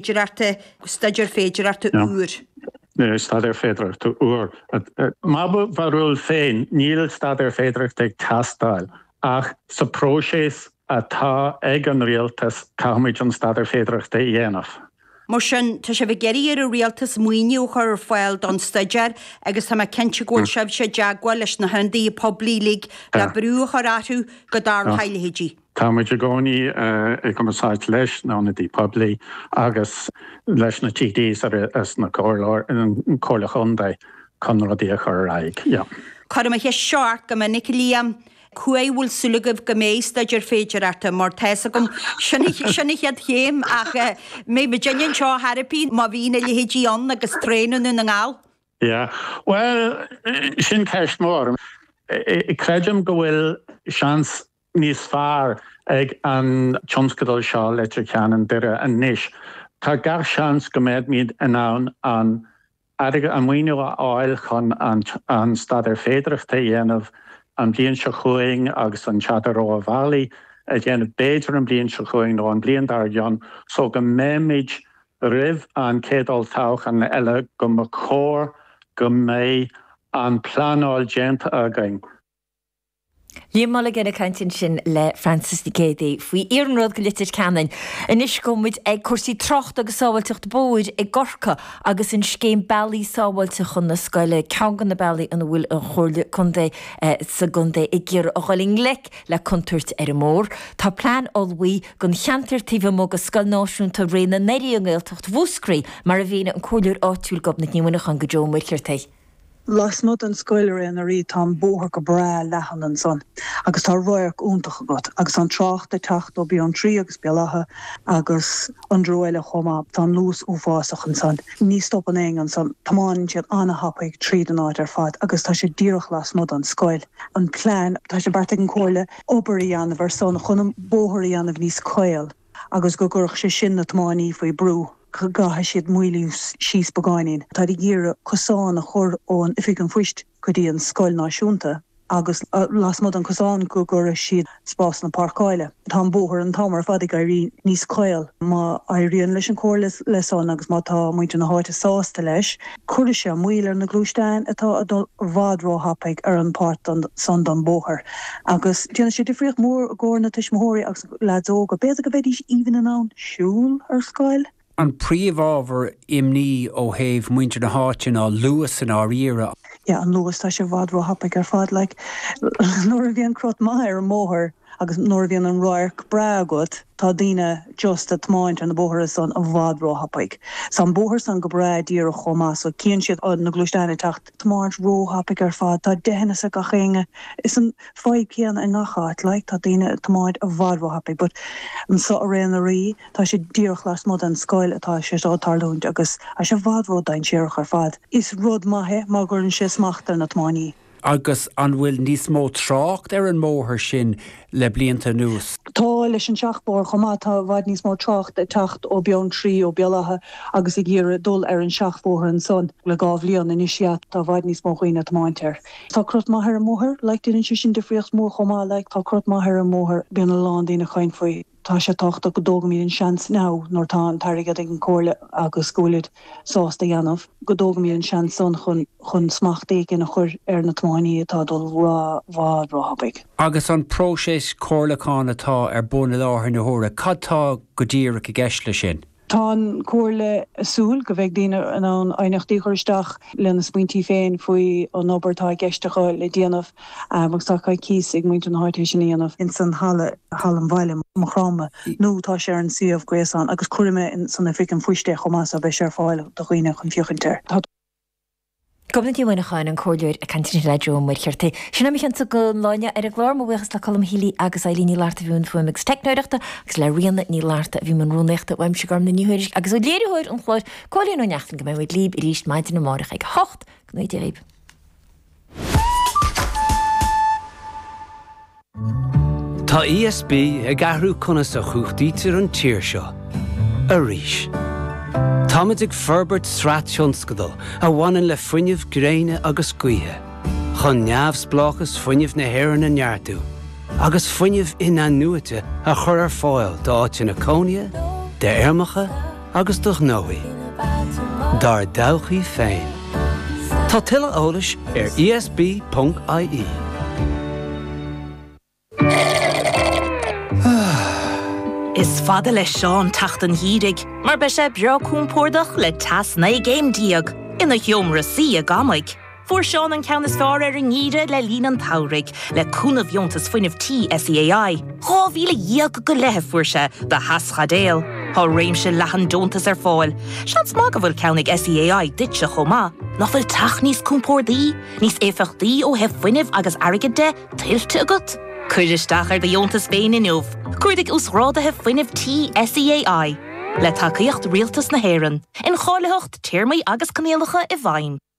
féidearthachta, staidéar féidearthachta úr. staidéar féidearthachta úr. Mar mo bharúil féin, níl staidéar féidearthachta ag teastáil ach sa próiseas atá ag an rialtas caithfimid an staidéar féidearthachta a dhéanamh. Mar sin, tá sibh ag iarraidh ar an rialtas maoiniú a chur ar fáil don staidéar agus tá mé cinnte go bhfuil sibhse i dteagmháil leis na hionadaithe poiblí uilig le brú a chur orthu go dtarlóidh a leithéid. Tá muid i gcónaí i gcumarsáid leis na hionadaí poiblí agus leis na TDs agus na comhairleoirí contae chun rudaí a chur ar aghaidh. Cuirim an cheist seo ort go minic, Liam. Cá huair a bhfuil súil agaibh go mbeidh staidéar féidearthachta? Mar tá 'fhios agam sin sin an chéad chéim ach an mbeidh muidinne anseo ar chor ar bith má bhíonn a leithéidí ann agus traein i nDún na nGall. Yeah. Bhuel, sin ceist mhór. Creidim go bhfuil seans níos fearr ag an tionscadal seo Leitir Ceanainn, Doire anois, tá gach seans go mbeimid in ann an airgead, an maoiniú a fháil chun an staidéar féidearthachta a dhéanamh an bhliain seo chugainn agus an rogha bealaí a dhéanamh b'fhéidir an bhliain seo chugainn nó an bhliain dár gcionn so go mbeimid roimh an chéad olltoghchán eile go mba chóir go mbeidh an phleanáil déanta againn. Liam Mulligan ag caint ansin le Frances Nic Géadaigh faoi iarnród go Leitir Ceanainn. Anois gabhfaidh muid ag cúrsaí tráchta agus sábháilteacht bóthair i gCorcaigh agus an scéim bealaí sábháilte chun na scoile, ceann de na bealaí ina bhfuil an Chomhairle Contae sa gcontae ag iarraidh a dhul i ngleic le contúirt ar an mbóthar. Tá plean ullmhaithe don cheantar taobh amuigh de Scoil Náisiúnta Ré na nDoirí i nGaeltacht Mhúscraí, mar a mhínigh an comhairleoir áitiúil Gobnait Ní Mhuineacháin do Joe Ó Muircheartaigh. Lasmuigh den scoil ar aon nós tá an bóthar go breá leathan ansan agus tá radharc iontach agat agus tá an trácht ag teacht ó Beanntraí agus Béal Átha agus ón dtreo eile chomh maith. Tá an luas uafásach ansan. Ní stopann éinne ansan. Tiomáineann siad ana-thapaidh tríd an áit ar fad agus tá sé díreach lasmuigh den scoil. An plean, tá sé beartaithe ag an comhairle obair a dhéanamh ansan chun an bóthar a dhéanamh níos caol. agus go gcuirfeadh sé sin na tiománaí faoi brú. go gcaithfidh siad moilliú síos beagáinín. Táid ag iarraidh cosán a chur ón Oifig an Phoist go dtí an Scoil Náisiúnta agus lasmuigh den chosán go gcuirfeadh siad spásanna páirceáile. Tá an bóthar an t-am ar fad ag éirí níos caol. Má éiríonn leis an Chomhairle le san agus má tá muintir na háite sásta leis cuirfidh sé moill ar na gluaisteáin atá ag dul i bhfad ró-thapaidh ar an pháirt san den bóthar agus déanfaidh sé difríocht mhór i gcomhair na tuismitheoirí agus Leaids óga, b'fhéidir go mbeidís even in ann siúl ar scoil? An príomhábhar imní ó thaobh muintir na háite ná luas i ndáiríre. Yeah, an luas, tá sé i bhfad róthapaigh ar fad, like nuair a bhíonn crot maith ar an mbóthar agus nuair a bhíonn an radharc breá agat, tá daoine just a' tiomáint ar na bóithre san i bhfad róthapaigh. 's tá an bóthar san go breá díreach chomh maith so cíonn siad na gluaisteáin ag teacht. tiomáint ró-thapaigh ar fad. Tá deithneas ag gach éinne. Is an fadhb céanna i ngach áit, like, tá daoine ag tiomáint i bhfad ró-thapaigh but anseo i Ré na nDoirí tá sé díreach lasmuigh den scoil atá sé seo ag tarlúint agus tá sé i bhfad ró-dainséarach ar fad. Is rud maith é mar go gcuireann sé smacht ar na tiománaithe. Agus an bhfuil níos mó trácht ar an mbóthar sin le blianta anuas. Tá, leis an seachbhóthar chomh maith. Tá i bhfad níos mó trácht ag teacht ó Beanntraí, ó Béal Átha agus ag iarraidh dul ar an seachbhóthar ansan. Le dhá bhliain anois sea, tá i bhfad níos mó dhaoine ag tiomáint air. Tá crot maith ar an mbóthar, like, déanann sé sin difríocht mhór chomh maith, like, tá crot maith ar an mbóthar, bíonn a lán daoine ag caint faoi. Tá sé tábhachtach go dtógaimid an seans now nuair atá an t-airgead ag an comhairle agus go bhfuilid sásta a dhéanamh, go dtógaimid an seans san chun smacht éigin a chur ar na tiománaithe atá ag dul róthapaidh. Agus an próiseas comhairliúcháin atá ar bun i láthair na huaire, cad tá go díreach i gceist leis sin? Tá an Chomhairle ag súil go mbeidh daoine in ann aighneachtaí a chur isteach lena smaointí féin faoi an obair atá i gceist acu le déanamh agus tá coicís ag muintir na háite é sin a dhéanamh ins an halla i Halla an Bhaile, Maigh Chromtha, nó tá sé ar an suíomh gréasáin agus cuirfidh mé san oifig an phoist é chomh maith so beidh sé ar fáil do dhaoine chun féachaint air. Tá. Gobnait Ní Mhuineacháin, an Comhairleoir ag caint inné le Joe Ó Muircheartaigh. Sin é mo cheannsa don lá inniu ar an gclár. Mo bhuíochas le Colm Healy agus Eilín Ní Fhlatharta a bhí i mbun fuaime agus teicneoireachta agus le Ríona Ní Fhlatharta a bhí i mbun rúnaíochta. Uaimse Gormfhlaith Ní Thuairisg agus ó léiritheoir an chláir, Cóilín Ó Neachtain go mbeidh muid libh arís maidin amárach ag a hocht. Go nuige. Tá ESB ag athrú conas a chumhachtaítear an tír seo arís. Táimid ag forbairt sraith tionscadal a bhaineann le fuinneamh gréine agus gaoithe, chun neamhspleáchas fuinnimh na hÉireann a neartú agus fuinneamh in-athnuaite a chur ar fáil d'áiteanna cónaithe, d'fheirmeacha, agus do ghnóthaí. Dár dtodhchaí féin. Tá tuilleadh eolais ar ESB.ie. Is fada le Seán teacht an gheimhridh mar beidh sé breá compordach le teas naoi gcéim déag ina sheomra suí ag amaigh. Fuair Seán an ceann is fearr ar an ngeimhreadh le linn an tsamhraidh, le cúnamh dheontas fuinnimh tí SEAI. Dhá mhíle dhéag go leith a fuair sé do theaschaidéal. Tá réimse leathan deontas ar fáil. Seans maith go bhfuil ceann ag SEAI duitse chomh maith. Nach bhfuil teach níos compórdaí, níos éifeachtaí ó thaobh fuinnimh agus airgid de, tuillte agat? Cuir isteach ar do dheontas féin inniu. Cuardaigh Uasghrádaithe Fuinnimh Tí SEAI. Le tacaíocht Rialtas na hÉireann. Incháilitheacht, téarmaí agus coinníollacha i bhfeidhm.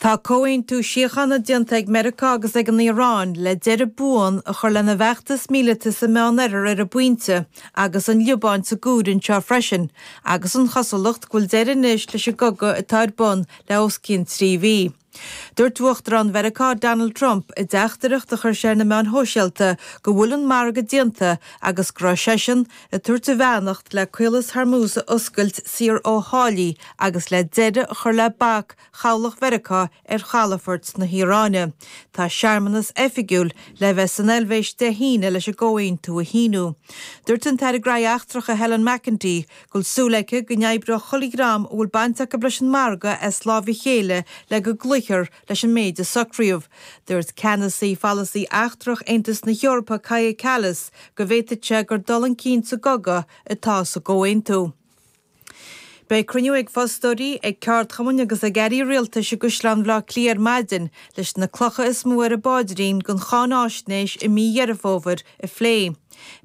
Tá comhaontú síochána déanta ag Meiriceá agus ag an Iaráin le deireadh buan a chur lena bhfeachtas míleata sa Meán Oirthear ar an bpointe agus an Liobáin sa gcur san áireamh freisin agus an chosúlacht go bhfuil deireadh anois leis an gcogadh atá ar bun le os cionn trí mhí. Dúirt Uachtarán Mheiriceá Donald Trump i dteachtaireacht a chuir sé ar na meáin shóisialta go bhfuil an margadh déanta agus go raibh seisean, ag tabhairt a bheannacht le Caolas Hormuz a oscailt saor ó tháillí agus le deireadh a chur le bac Chabhlach Mheiriceá ar chalafoirt na hIaráine. Tá searmanas oifigiúil le bheith san Eilvéis Dé hAoine leis an gcomhaontú a shíniú. Dúirt an tAire Graithí Eachtracha Helen McEntee go bhfuil súil aici go n-oibreoidh chuile dhream a bhfuil baint acu leis an margadh as lámh a chéile le go gcloífear Leis an méid a socraíodh, dúirt ceannasaí pholasaí eachtrach Aontas na hEorpa Kaja Kallas go bhféadfadh sé gur dul chun cinn sa gcogadh atá sa gcomhaontú. Beidh cruinniú ag fostóirí, ag ceardchumainn agus ag airí rialtais i gCaisleán Bhaile Átha Cliath ar maidin leis na clocha is mó ar a bpáidrín den cháinfháisnéis i mí Dheireadh Fómhair a phlé.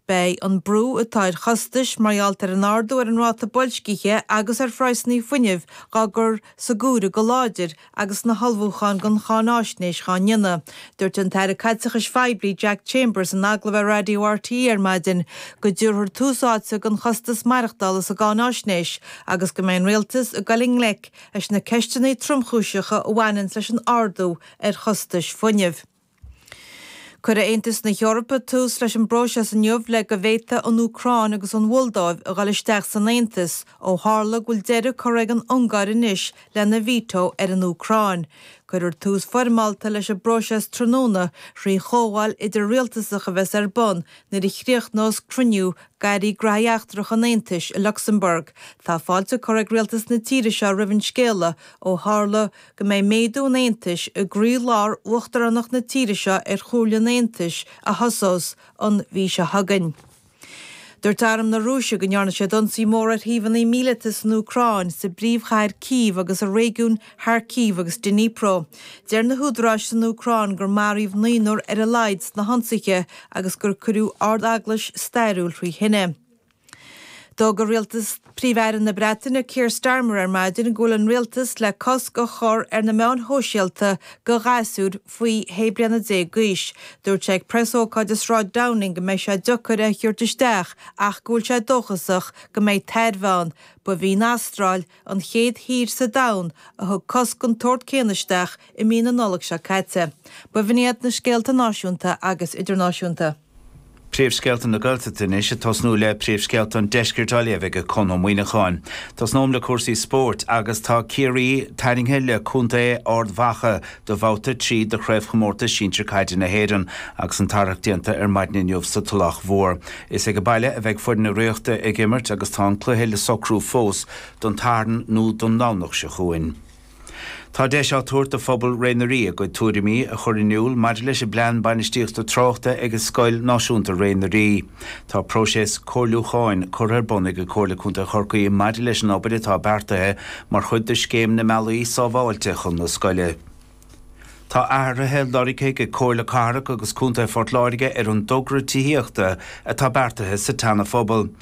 Beidh an brú atá ar chostais mar gheall ar an ardú ar an ráta boilscithe agus ar phraghsanna fuinnimh dhá gcur san áireamh go láidir agus na hullmhúcháin don cháinfháisnéis dhá ndéanamh. Dúirt an tAire Caiteachais Phoiblí, Jack Chambers, in agallamh ar Raidió RTÉ ar maidin go dtabharfar tús áite don chostas maireachtála sa gcáinfháisnéis agus go mbeidh an Rialtas ag dul i ngleic leis na ceisteanna tromchúiseacha a bhaineanns leis an ardú ar chostais fuinnimh. Cuirfidh Aontas na hEorpa tús leis an bpróiseas inniu le go bhféadfaidh an Úcráin agus an Mholdóiv a dhul isteach san Aontas ó tharla go bhfuil deireadh curtha ag an Ungáir anois lena veto ar an Úcráin. Cuirfear tús foirmeálta leis an bpróiseas tráthnóna thrí chomhdháil idir-rialtasach a bheas ar bun nuair a chríochnós cruinniú d'Airí Graithí Eachtracha an Aontais i Lucsamburg. Tá fáilte curtha ag rialtas na tíre seo roimh an scéala ó tharla go go mbeidh méadú an Aontais i gcroílár uachtaránacht na tíre seo ar Chomhairle an Aontais a thosós an mhí seo chugainn. Dúirt arm na Rúise go ndearna siad ionsaí mór ar shuíomhanna míleata san Úcráin, sa bpríomhchathair Cív agus i réigiúin Kharkiv agus Dnipro. Deir na húdaráis san Úcráin gur maraíodh naonúr ar a laghad sna hionsaithe agus gur cuireadh Ard-Eaglais stairiúil thrí thine. D'fhógair rialtas Phríomh-Aire na Breataine Keir Starmer ar maidin go bhfuil an rialtas le cosc a chur ar na meáin shóisialta do ghasúir faoi shé bliana déag d'aois. Dúirt sé ag preasócáid i Sráid Downing go mbeidh sé deocair é a thabhairt isteach ach go bhfuil sé dóchasach go mbeidh tairbhe ann. Ba í an Astráil an chéad thír sa domhan a thug cosc den tsórt céanna isteach i mí na Nollag seo caite. Ba bh'in iad na scéalta náisiúnta agus idirnáisiúnta. Príomhscéalta na Gaeltachta anois, ag tosnú le príomhscéalta an Deiscirt á léamh ag Conn Ó Muíneacháin. Tosnóm le cúrsaí spóirt agus tá Ciarraí tarraingthe le contae Ard Mhacha do bhabhta a trí de Chraobhchomórtas Sinsir Caide na hÉireann agus an tarrac déanta ar maidin inniu sa Tulach Mhór. Is ag baile a bheidh foireann na Ríochta ag imirt agus tá an cluiche le socrú fós don tSatharn nó don Domhnach seo chugainn. Tá deis á tabhairt do phobal Ré na nDoirí a gcuid tuairimí a chur in iúl maidir leis an bPlean Bainistíochta Tráchta ag Scoil Náisiúnta Ré na nDoirí. Tá próiseas comhairliúcháin curtha ar bun ag Comhairle Contae Chorcaí maidir leis an obair atá beartaithe mar chuid de Scéim na mBealaí Sábháilte chun na Scoile. Tá athruithe lorgtha ag Comhairle Cathrach agus Contae Phort Láirge ar an dtogra tithíochta atá beartaithe sa tSeana-Phobal.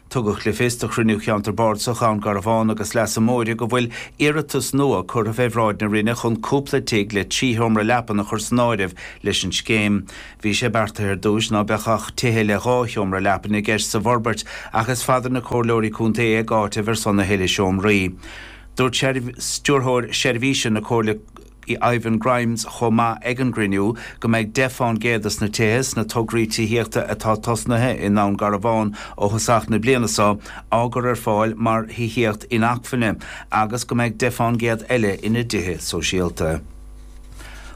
Tugadh le fios do chruinniú Cheantar Bardasach Dhún Garbhán agus Leasa Móire go bhfuil iarratas nua curtha fé bhráid na Roinne chun cúpla tigh le trí sheomra leapan a chur san áireamh leis an scéim. Bhí sé beartaithe ar dtúis ná beadh ach tithe le dhá sheomra leapan i gceist sa bhforbairt ach is fada na Comhairleoirí Contae ag áiteamh ar son a thuilleadh seomraí. Dúirt Stiúrthóir Seirbhíse na Comhairle. Ivan Grimes chomh maith ag an gcruinniú go mbeidh 10 fán gcéad de na tithe sna tograí tithíochta atá tosnaithe i nDún Garbhán ó thosach na bliana seo á gcur ar fáil mar thithíocht inacmhainne agus go mbeidh 10 fán gcéad eile ina dtithe sóisialta.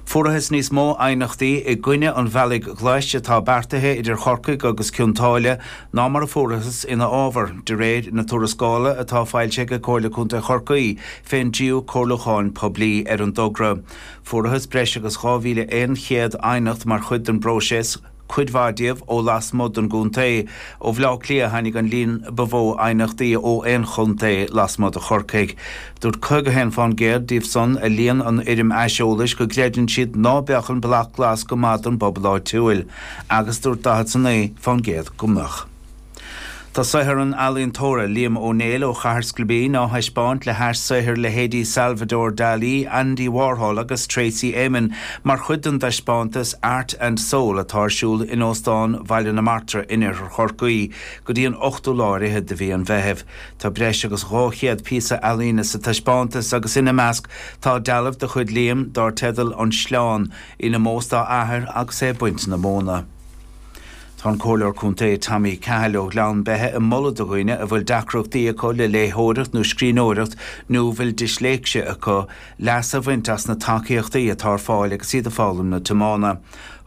Fuarathas níos mó aighneachtaí i gcoinne an bhealaigh ghlais atá beartaithe idir Chorcaigh agus Cionn tSáile ná mar a fuarathas ina fhábhar, de réir na tuarascála atá foilsithe ag Comhairle Contae Chorcaí. I ndiaidh comhairliúcháin poiblí ar an dtogra. Fuarathas breis agus 2,100 aighneacht mar chuid den bpróiseas, cuid mhaith díobh ó lasmuigh den gcontae. Ó Bhleá Cliath a tháinig an líon ba mhó aighneachtaí ó aon chontae lasmuigh de Chorcaigh. Dúirt 51 fán gcéad díobhsan a líon an fhoirm aiseolais go gcreideann siad ná beadh an Bealach Glas go maith don bpobal áitiúil agus dúirt 49 fán gcéad go mbeadh. Tá saothar an ealaíontóra Liam Ó Néill ó Chathair Scoilbín á thaispeáint le hais saothair leithéidí Salvador Dalí, Andy Warhol agus Tracey Emin mar chuid den dtaispeántas Art and Soul atá ar siúl in Óstán Bhaile na Martra in Oirthear Chorcaí go dtí an 8ú lá ar fhichead de mhí an Mheithimh. Tá breis agus 200 píosa ealaíne sa taispeántas agus ina measc tá dealbh de chuid Liam dar teideal An Sleán, in ómós dá athair agus é ag baint na móna. Tá an Comhairleoir Contae Tommy Cahill ó Ghleann Beithe ag moladh do dhaoine a bhfuil deacrachtaí acu le léitheoireacht nó scríbhneoireacht nó a bhfuil disléicse acu, leas a bhaint as na tacaíochtaí atá ar fáil agus iad ag foghlaim na tiomána.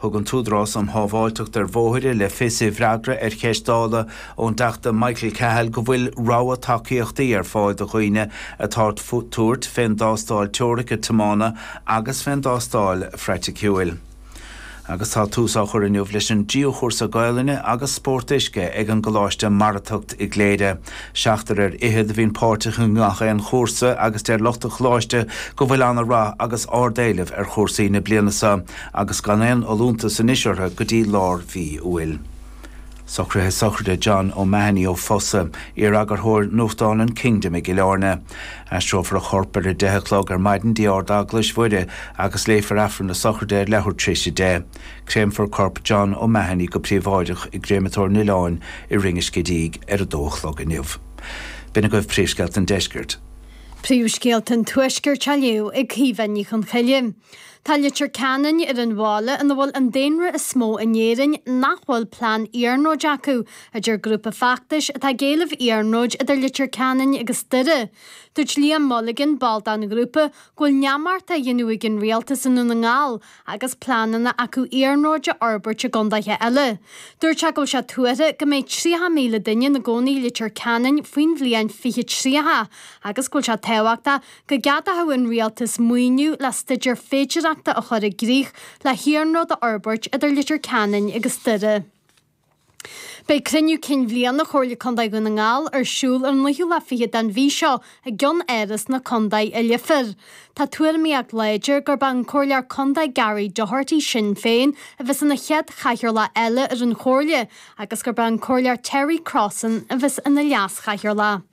Thug an tÚdarás um Shábháilteacht ar Bhóithre le fios i bhfreagra ar cheist Dála ón dTeachta Michael Cahill go bhfuil rogha tacaíochtaí ar fáil do dhaoine atá ag tabhairt fén dtástáil teoirice tiomána agus fén dtástáil phraiticiúil. Agus tá tús á chur inniu leis an dtríú chúrsa Gaolainne agus Spórt Uisce ag an gColáiste Maratacht i gCléire. Seachtar ar fhichead a bhíonn páirteach i ngach aon chúrsa agus deir lucht an Choláiste go bhfuil ana rath agus ard éileamh ar chúrsaí na bliana seo agus gan aon fholúntas anois orthu go dtí lár mhí Iúil. Socruithe Sochraide John O'Mahony ó Fosa, iar-eagarthóir nuachtáin an Kingdom i gCill Airne. Aistreofar a chorp ar a deich a chlog ar maidin go dtí Ard-Eaglais Mhuire agus léifear Aifreann na Sochraide ar leathuair tar éis a deich. Créamfar corp John O'Mahony go príobháideach i gcréamatóir an Oileáin i Rinn an Scidígh ar a dó a chlog inniu. B'in agaibh príomhscéalta an deiscirt. Príomhscéalta an tuaiscirt á léamh ag Caoimhe Ní Chonchoille. Tá Leitir Ceanainn ar an bhaile ina bhfuil an daonra is mó in Éirinn nach bhfuil plean iarnróid acu, a deir grúpa feachtais atá ag éileamh iarnróid idir Leitir Ceanainn agus Doire. Dúirt Liam Mulligan, ball den ghrúpa, go bhfuil neamart á dhéanamh ag an rialtas i nDún na nGall agus pleananna acu iarnróid a fhorbairt i gcontaetha eile. Dúirt sé go bhfuil sé tuartha go mbeidh 30,000 duine ina gcónaí i Leitir Ceanainn faoin bhliain 2030 agus go bhfuil sé tábhachtach Go gceadódh an rialtas maoiniú le staideár féidireachta a chur i gcrích le hiarnród a fhorbairt idir Leitir Ceanainn agus Doire. Beidh cruinniú cinn bhliana Chomhairle Contae Dhún na nGall ar siúl ar an naoú lá fichead den mhí seo i gCeannáras na Contae i Leifear. Tá tuairimíocht láidir gurb é an Comhairleoir Contae Gary Doherty Sinn Féin a bheas ina chéad chathaoirleach eile ar an Chomhairle agus gurb é an Comhairleoir Terry Crossan a bheas ina leas-chathaoirleach.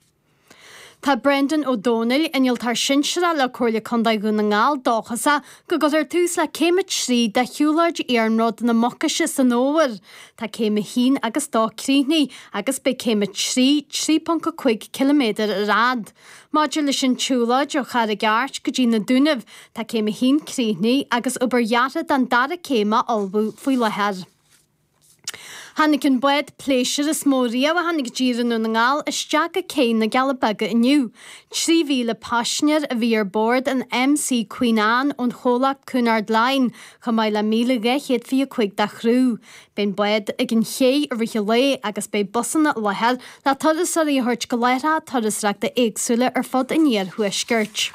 Tá Brendan O'Donnell, Innealtóir Sinsearach le Comhairle Contae Dhún na nGall dóchasach go gcuirfear tús le céim a trí de shiúlóid Iarnród na Mucaise san fhómhar. Tá céim a haon agus dó críochnaithe agus beidh céim a trí, 3.5 km ar fhad. Maidir leis an tsiúlóid ó Charraig Airt go dtí na Dúnaibh, tá céim a haon críochnaithe agus obair dheartha don dara céim á ullmhú faoi láthair. Tháinig an bád pléisiúir is mó riamh a tháinig i dtír i nDún na nGall isteach go cé na gCealla Beaga inniu. 3,000 paisinéir a bhí ar bord an MC Queen Anne ón chomhlacht Cunard Line, chomh maith le 1,225 de chriú. Beidh an bád ag an chéidh i rith an lae agus beidh busanna i láthair le turasóirí a thabhairt go láithreacha turasóireachta éagsúla ar fud an iarthuaiscirt.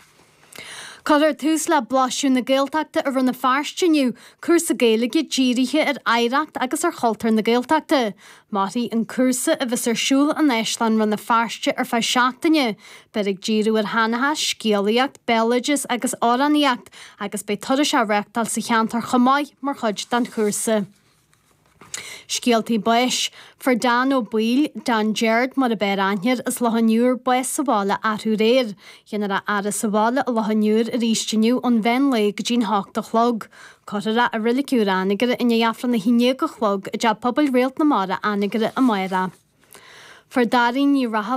Cuirfear tús le Blaiseadh na Gaeltachta i Rann na Feirste inniu, cúrsa Gaeilge dírithe ar oidhreacht agus ar chultúr na Gaeltachta. Mairfidh an cúrsa, a bheas ar siúl in Áislann Rann na Feirste, ar feadh seachtaine. Beifear ag díriú ar sheanchas, scéalaíocht, béaloideas agus amhránaíocht agus beidh turais á reáchtáil sa cheantar chomh maith mar chuid den chúrsa. Scéaltaí báis, Fuair Dan Ó Baoill, Dan Jeairt mar ab fhearr aithne air as Loch an Iúir, bás sa bhaile arú aréir. Dhéanfar a fhaire sa bhaile i Loch an Iúir arís inniu ón mheán lae go dtí'n hocht a chlog. Cuirfear é i Reilig Úr Anagaire i ndiaidh Aifreann a haon déag a chlog i dTeach Pobail Réalt na Mara, Anagaire, amárach. Fuair Dairín Ní